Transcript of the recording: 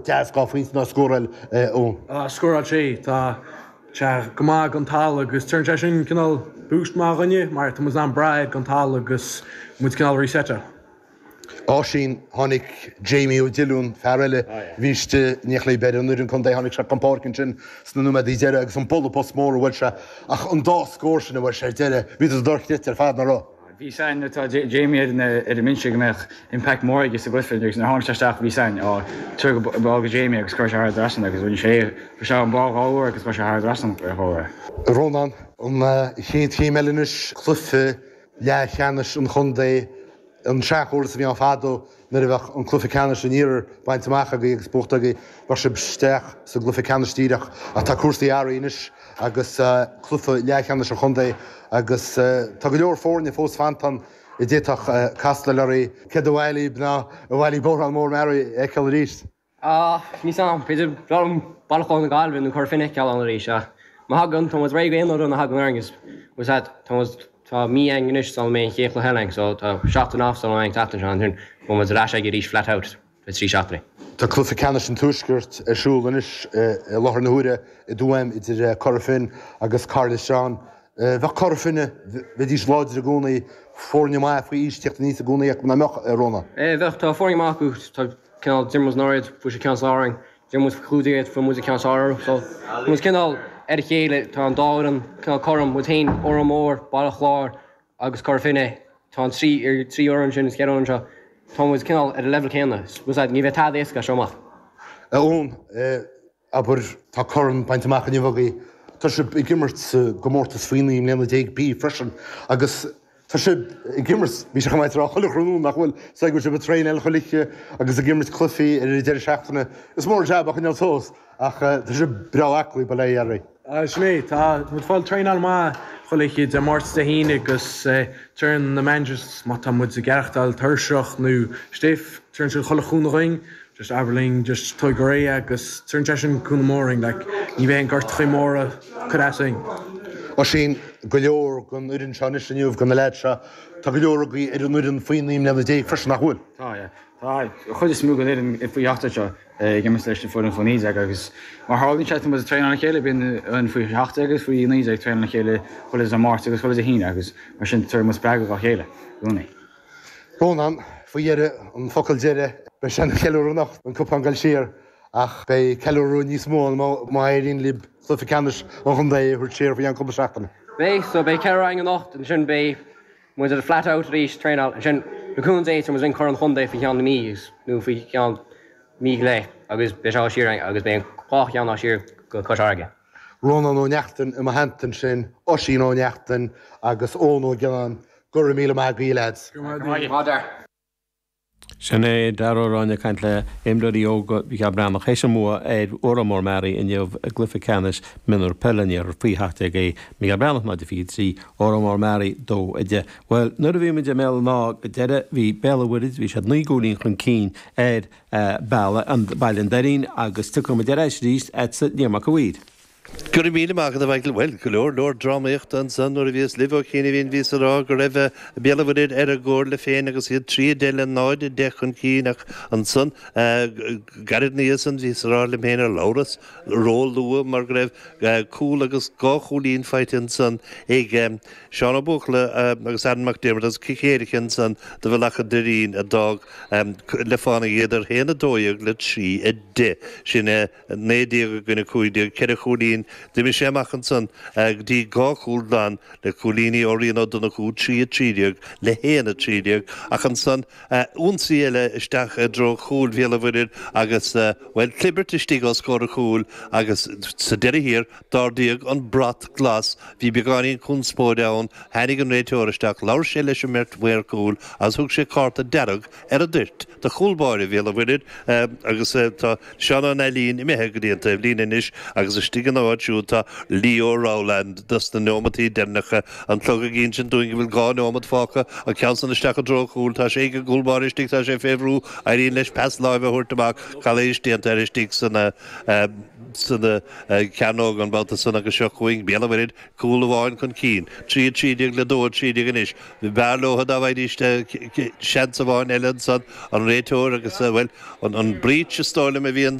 deas dhá phointe ná scóráil Eoin. scóráil sé tá sé go maith don team agus tugann sé sin cineál boost maith dhuinne mar tá muid in ann breathe agus muid cineál resetáil. Oisín, Tháinig Jamie O Dillon, fear eile, bhí stáitse níl aon fhear ar an bhfoireann contae tháinig sé chun páirce ansin sna nóiméadaí deireadh agus an bualadh bos mór a fuair sé ach an dá scór sin a fuair sé ar deireadh bhíodar dochreidte ar fad, nach raibh? Bhí a fhios againn le Jamie ar an mbinse go mbeadh impact mór aige sa gcluiche féin agus nuair a tháinig sé isteach bhí a fhios againn tabhair an ball go Jamie agus chuir sé thar an trasnán agus rinne sé é fuair sé an ball dhá uair agus chuir sé thar an trasnán é dhá uair. Rónán, An chéad chéim eile anois, cluiche leathcheannais an chontae, an seanchóras a bhí ann fadó. Nuair a bheadh an cluiche ceannais an iarthair bainte amach agaibh agus buaite agaibh, bheadh sibh isteach sa gcluiche ceannais díreach. Ach tá cúrsaí athraithe anois agus cluiche leathcheannais an chontae agus tá go leor foirne fós fanta ann a d'fhéadfadh castáil oraibh. Céard ab fhearr libh nó ar mhaith libh Órán Mór Mearaí a fheiceáil arís? Á níl a fhios agam. B'fhéidir b'fhearr liom Baile Chláir na Gaillimhe nó Cora Finne a fheiceáil ann arís. Ach má thagann, tá muid réidh aon uair a thagann orainn agus muid, tá muid, tá mí againn anois sula mbeidh an chéad chluiche eile againn so tá seachtain off againn an tseachtain seo ansin beidh muid ar ais aige arís flat out le haghaidh trí seachtainí. Tá cluiche ceannais an Tuaiscirt ar siúl anois i láthair na huaire i dTuaim idir Cora Finne agus Cathair Loistreáin. Bheadh Cora Finne, bheidís láidir i gcónaí, foirne maithe faoi aois, teacht aníos i gcónaí acu nach mbeadh, a Rónán? Bheadh, tá foirne maith acu, tá. cineál d'imir muid iad faoi dhó, fuair siad ceann suas orainn, d'imir muid faoi chúig déag iad, fuair muide ceann suas orthu, so tá muid cineál ar a chéile, tá an dá fhoireann cineál cothrom, muid féin, Órán Mór, Baile Chláir agus Cora Finne, tá an trí, trí fhoireann sin, na ceithre fhoireann seo, tá muid cineál ar an leibhéal céanna, ní bheidh tada éasca as seo amach. Eoin, Abair, tá corn bainte amach inniu agaibh, tá sibh ag imirt sa gcomórtas faoi naoi mbliana déag B freisin agus tá sibh ag imirt, bhí sibh, comhghairdeas, ar chuile ghrád, nach bhfuil? Is dóigh go bhfuil sibh ag traenáil chuile oíche agus ag imirt cluichí ar an deireadh seachtaine. Is mór an jab é a choinneáil suas ach tá sibh breá aclaí, bail ó Dhia oraibh. Sin é, tá muid ag fáil traenáil maith chuile oíche Dé Máirt, Dé hAoine agus tugann na managers má tá muid ag aireachtáil tuirseach nó stiff, tugann siad chuile chúnamh dhuinn, just abair leo just tóig go réidh agus tugann sé sin cúnamh mór dhuinn like, ní bheidh aon gortachaí móra ag cur as dhuinn. Oisín, Go leor den fhoireann seo anois inniu, de na leaids seo, tá go leor agaibh ar an fhoireann faoi naoi mbliana déag freisin nach bhfuil? Tá, yeah. Tá an chuid is mó den fhoireann faoi seacht déag seo. ag imirt leis an bhfoireann faoi 19 agus mar tharlaíonn sé tá muid ag traenáil le chéile, bíonn an faoi 17 agus faoi 19 ag traenáil le chéile chuile Dé Máirt agus chuile Dé hAoine agus mar sin tugann muid spreagadh dá chéile i gcónaí. Rónán, Faoi dheireadh, an focal deireadh, beidh sé ina cheiliúradh anocht, an cupán ag goil siar ach beidh ceiliúradh níos mó ann má éiríonn libh cluiche ceannais an chontae a thabhairt siar faoi cheann cúpla seachtaine. Beidh, so beidh ceiliúradh ann anocht, ansin beidh Muid flat out arís traenáil ansin. Le cúnamh Dé tá muid linn cur an chontae faoi cheann mí nó faoi cheann mí go leith agus beidh sé á siar agus beidh an dhá cheann á siar go Cois Fharraige. Rónán Ó Neachtain i mo theannta ansin, Oisín Ó Neachtain agus Eoin Ó Giolláin. Go raibh míle maith agaí lads. Go raibh maith agat. Sin é Darragh Ó Ráinne ag caint le imreoirí óga Mhicheál Breathnach théis a mbua ar Órán Mór Mearaí inniu i gcluiche ceannais Mionúr Peile an Iarthar faoi 17 A. Micheál Breathnach 0-23 Órán Mór Mearaí 2-10. Bhuel nuair a bhí muid i mBéal an Átha go deireadh bhí Béal an Mhuirthead, bhí siad naoi gcúilín chun cinn ar Bealach an Doirín agus tiocfaidh muid ar ais arís agatsa Liam Mac a' Mhaoir. Go raibh míle maith agat a Mhichael. Bhuel, go leor, leor drámaíochta ansan nuair a bhíos libh ó chianaibhín bhíos á rá go raibh Béal an Mhuirthead ar a gcomhairle féin agus iad 3, 10 le 0, 10 chun cinn ach ansan gairid ina dhiaidh san bhíos á rá liom féin ar labhras ró-luath mar go raibh cúl agus dhá chúilín faighte ansan ag Seán Ó Buachalla agus Alan Mac Diarmada agus cic éirice ansan do Bhealach an Doirín a d'fhág le fánaidh iad ar 1, 12 le 3, 10. Sin é. 19 i gcoinne 15, ceithre chúilín, d'imigh sé amach ansan go dtí dhá chúl glan le cúilíní ó Rian Ó Donnchú, 3 13 le 1 13, ach ansan ionsaí eile isteach i dtreo chúil Bhéal an Mhuirthead agus, bhuel, clibirt istigh os comhair an chúil agus sa deireadh thiar d'ardaíodh an brat glas, bhí beagáinín conspóide ann, tháinig an réiteoir isteach, labhair sé leis an mbeirt mhaor cúil agus thug sé cárta dearg ar an dtoirt, do chúl báire Bhéal an Mhuirthid agus tá Seán Ó Nailín imithe go dtí an taobh líne anois agus istigh ina áit siúd tá Leo Rowland dos na neomataí deirneacha, an clog ag ínsint dúinn go bhfuil dhá neomat fágtha, an ceann san isteach i dtreo chúil, tá sé ag an gcúl báire istigh, tá sé fé bhrú, éiríonn leis pas láimhe a thabhairt amach, calaois déanta air istigh san cearnóg an babhta san agus seo chugainn Béal an Mhuirthid, Cúl amháin chun cinn, trí a trí déag le dó a trí déag anois. B'fhearr leotha dá bhfaighidís seans amháin eile ansan, an réiteoir agus, bhuel, an breith is dóigh liom a bhí an.